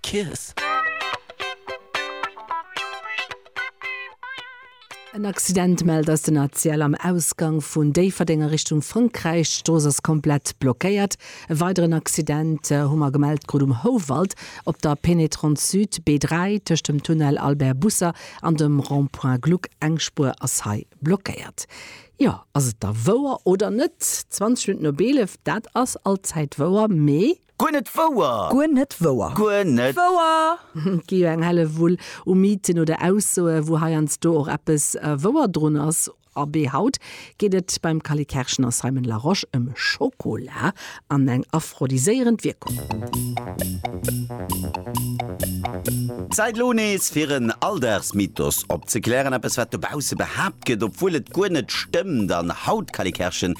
Kiss. En Accident mellt eis den ACL am Ausgang vun Déifferdeng a Richtung Frankräich. D'Strooss ass komplett blockéiert. E weideren Accident hu mer gemellt krut um Houwald op der Pénétrante Sud, B3, tëscht dem Tunnel Albert Busser an dem Rond-point Gluck. Eng Spuer ass hei blockéiert. Jo, ass et da wouer oder net? 20 Minutt no Beelef, dat ass allzäit wouer, mee. Guer net wouer! Guer net wouer! Guer net. Wouer! Et gi jo eng Hellewull u Mythen oder Aussoe wou heiansdo och eppes wouer drun ass. Abee haut geet et beim Kali Kerschen a Simon Larosche ëm Schokola an eng aphrodisierend Wierkung. Zäit lo nees fir en Alldagsmythos opzeklären, eppes wat dobausse behaapt gëtt, obwuel et guer net stëmmt. An Haut Calikerchen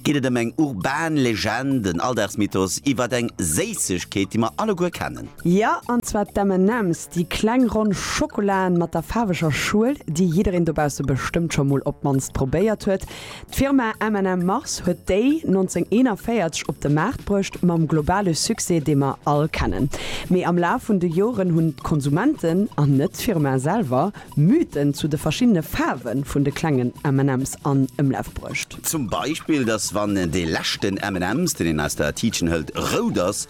geet et ëm eng urban Legend, en Alldagsmythos iwwert eng Séissegkeet, déi mer alleguer kennen. Jo, an zwar d'M&M's, déi kleng ronn Schokolaen mat der faarweger Schuel, déi jiddereen dobausse bestëmmt scho mol op d'mannst probéiert huet. D'Firma MM Mars huet déi 1941 op de Maart bruecht, mam globale Succès, dee mer all kennen. Mee am Laf vun de Joren hunn d'Konsumenten, an net d'Firma selwer, Mythen zu de verschiddene Faarwe vun de klengen MM's an Ëmlaf bruecht. Zum Beispill, dass wann dee leschten MM's, deen een aus der Tiitchen hëlt, rout ass,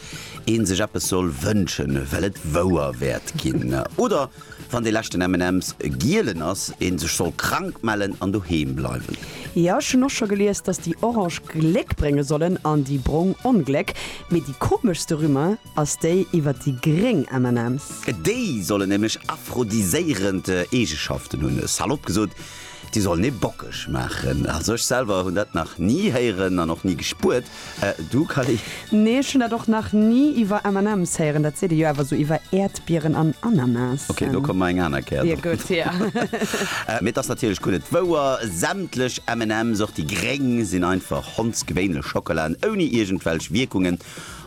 ee sech eppes soll wënschen, well et wouer wäert ginn. Oder Wann dee leschten M&M's e gielen ass, een sech soll krank mellen an doheem bleiwen. Jo ech hun och scho gelies dass déi orange Gléck brénge sollen an déi brong Ongléck, mee déi komeschste Rumeur ass déi iwwert déi gréng M&M's. Déi sollen nämlech aphrodiséierend Eegeschaften hunn. Salop gesot. Déi sollen ee bockeg maachen. Also ech selwer hunn dat nach ni héieren an och ni gespuert. Du Kali? Nee, ech hunn dat och nach ni iwwer M&M's héieren. Dat seet ee jo awer esou iwwer Äerdbieren an Ananasen. Ok, do komme mer eng aner Kéier drop. Gutt, ja. Mee et ass natierlech gutt et wouer, sämtlech M&M's, och déi gréng, sinn einfach hondsgewéinlech Schockelaen ouni iergendwelch Wierkungen.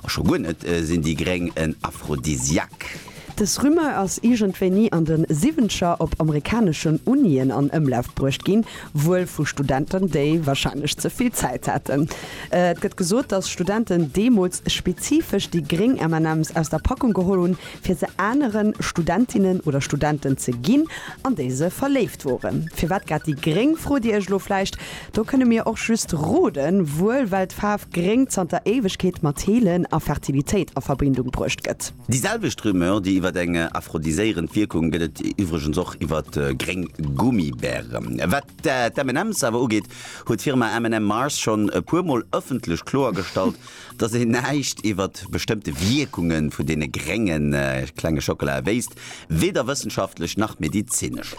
A scho guer net sinn déi Gréng en Aphrodisiaque. Dës Rumeur ass iergendwéini an de Siwwenzeger op amerikaneschen Unien an Ëmlaf bruecht ginn, wuel vu Studenten, déi warscheinlech ze vill Zäit haten. Et gëtt gesot, datt Studenten deemools spezifesch déi gréng MNMs aus der Packung geholl hunn, fir se anere Studentinnen oder Studenten ze ginn, an déi se verléift woren. Firwat grad déi gréng, frot Dir Iech elo vläicht. Do kënne mir och just roden, wuel well d'Faarf Gréng zanter Éiwegkeet mat Heelen a Fertilitéit a Verbindung bruecht gëtt. Déi selwecht Rumeur, déi iwwert eng aphrodiséierend Wierkung, gëtt et iwwregens och iwwer gréng Gummibären. Wat d'M&M's awer ugeet, huet d'Firma M&M Mars schonn e puer Mol ëffentlech kloergestallt, Dass een näischt iwwert bestëmmte Wierkunge vun deene grénge klenge Schockelae wéisst, weder wëssenschaftlech nach medizinesch.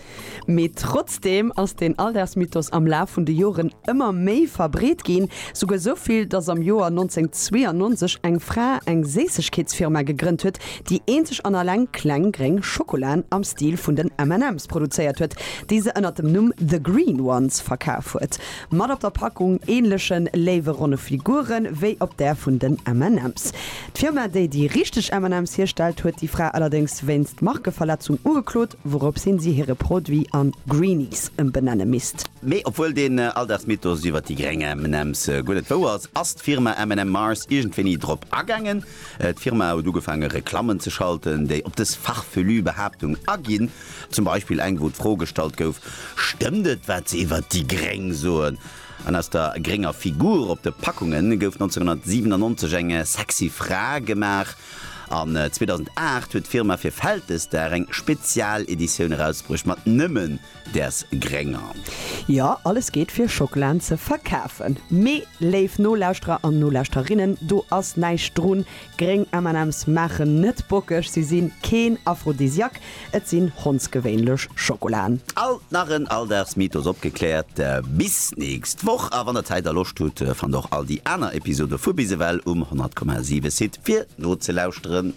Mee trotzdeem ass den Alldagsmythos am Laf vun de Joren ëmmer méi verbreet ginn, souguer sou vill, dass am Joer 1992 eng Fra eng Séissegkeetsfirma gegrënnt huet, déi eenzeg an alleng kleng gréng Schockelaen am Stil vun den M&M's produzéiert huet, déi se ënner dem Numm The Green Ones verkaf huet. Mat op der Packung ähnlechen léiwe ronne Figuren wéi op där vun den M&M's. D'Firma déi déi richteg M&M's hierstellt huet déi Fra allerdéngs wéinst Markeverletzung ugeklot, wourops hin si hire Produit an Greenies ëmbenenne misst. Mee obwuel deen Alldagsmythos iwwert déi gréng M&M's guer net wouer ass, ass d'Firma M&M Mars iergendwéini drop agaangen. D'Firma huet ugefaange Reklammen ze schalten déi op dës farfelu Behaaptung aginn. Zum Beispill eng, wou d'Fro gestallt gouf, Stëmmt et, wat se iwwert déi Gréng soen? An aus der grénger Figur op de Packunge gouf 1997 eng sexy Fra gemaach. An 2008 huet d'Firma fir Vältesdag eng Spezialeditioun erausbruecht mat nëmmen däers Grénger. Jo, alles geet fir Schokelaen ze verkafen. Mee, léif Nolauschterer an Nolauschterinnen, do ass näischt drun. Gréng MNMs maachen net bockeg, si sinn keen Aphrodisiak, et sinn hondsgewéinlech Schokolaen. Alt nach en Alldagsmythos opgekläert. Bis nächst Woch a wann der Zäit a Loscht hutt, fannt och all déi aner Episode vu Bis ewell um 100,7 Site fir nozelauschteren.